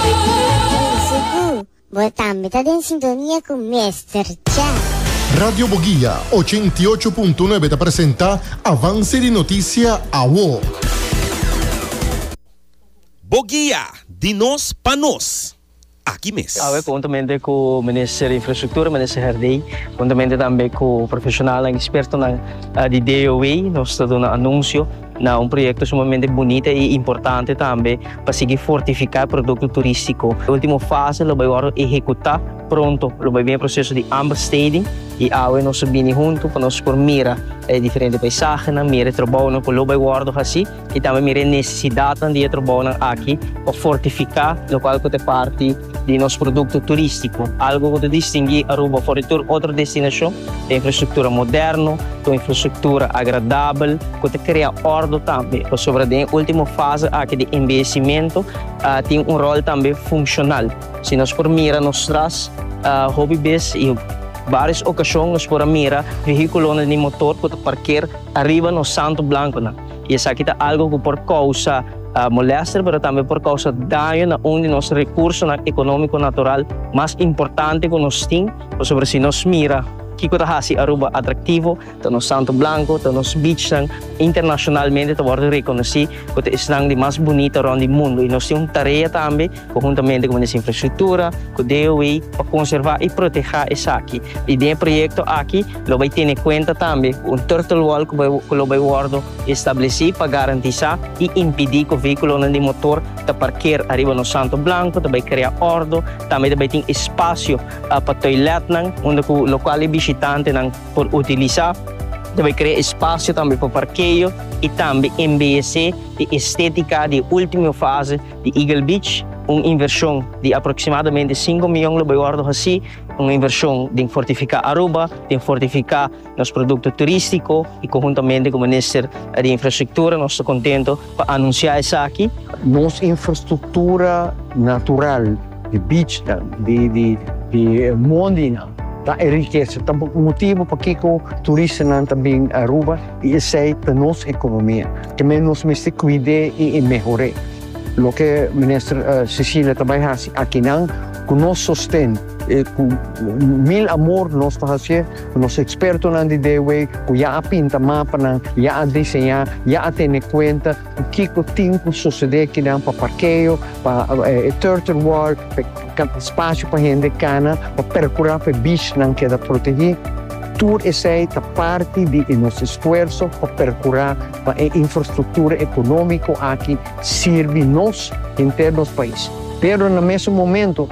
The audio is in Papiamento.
Fisico, Bo tambe ta den sintonia cu Mester Chef. Radio Boguia ochenta i ocho punto nuebe ta presenta Avance di Noticia Awo. Boguia, di nos pa nos. Aki mes. Awe contumente cu Minister Infrastructura, Minister Herdey, contumente tambe cu profesionalnan y expertonan di DOW, nos ta duna anuncio. Na un proyekto sumamente bunita i importante tambe pa sigui fortifiká e produkto turístiko. E último fase lo bai wòrdu ehekutá. Pronto lo bai bin e proseso di ambersteding i awe nos a bini huntu pa nos por mira e diferente paisahenan, mira e trobounan ku lo bai wòrdu hasí i tambe mira e nesesidatnan di e trobounan aki pa fortifiká lokal ku ta e parti di nos produkto turístiko, algu ku ta distingui Aruba for di tur otro destinashon, ta infrastruktura moderno, ta un infrastruktura agradabel ku ta krea òrdu tambe, pasobra den e último fase aki di enbejesimentu tin un ròl tambe funshonal. Si nos por mira nos tras, hopi bes i vários okashon nos por a mira vehíkulonan di motor ku ta parker ariba nos santu blankunan. I esaki ta algo ku por kousa molèster pero tambe por kousa daño na un di nos rekursonan ekonómiko natural mas importante ku nos tin, pasobra si nos mira kiko ta hasi Aruba atraktivo, ta nos Santo Blanco, ta nos bichnan, internashonalmente ta wòrdu rekonosí ku ta esnan di mas bunita rònt di mundu i nos tin un tarea tambe conjuntamente cu Minister Infrastructura, cu DOW, pa conserva y proteha esaki. Y den e proyecto aki lo bay tene cuenta tambe cu un turtle wall cu lo bay wordo estableci pa garantisa y impidi cu vehiculonan di motor ta parker ariba nos santo blanco, ta bay crea ordo, tambe ta bay tin espacio pa toiletnan unda cu locual e bishitantenan por utilisa. Ta bay crea espacio tambe pa parkeo y tambe embellece e estetica di e ultimo fase. di Eagle Beach, un invershon di aproksimadamente sinku mion lo bai wòrdu hasí, un invershon den fortifiká Aruba, den fortifiká nos produkto turístiko i konhuntamente ku minister di infrastruktura nos ta kontentu pa anunsiá esaki. Nos infrastruktura natural di beachnan, di mondinan ta enrikese, ta motibu pakiko turistanan ta bin Aruba. i esei ta nos ekonomia. Temei nos mester kuid'é i e mehor'é. Loke Minister Cecilia ta bai hasi akinan ku nos sosten i ku mil amor nos ta hasié ku nos ekspertonan di DW ku ya a pinta mapanan, ya a diseñá, ya a tene kuenta, cu kico tin cu socede kinan pa parkeo, pa e turtle wall, pa e canta spacio pa hende cana, pa percura pa e beachnan keda protegi. Tur esey ta parti di e nos esfuerso pa percura pa e infrastructura economico aki sirbi nos henter nos pais. Pero na mesun momento,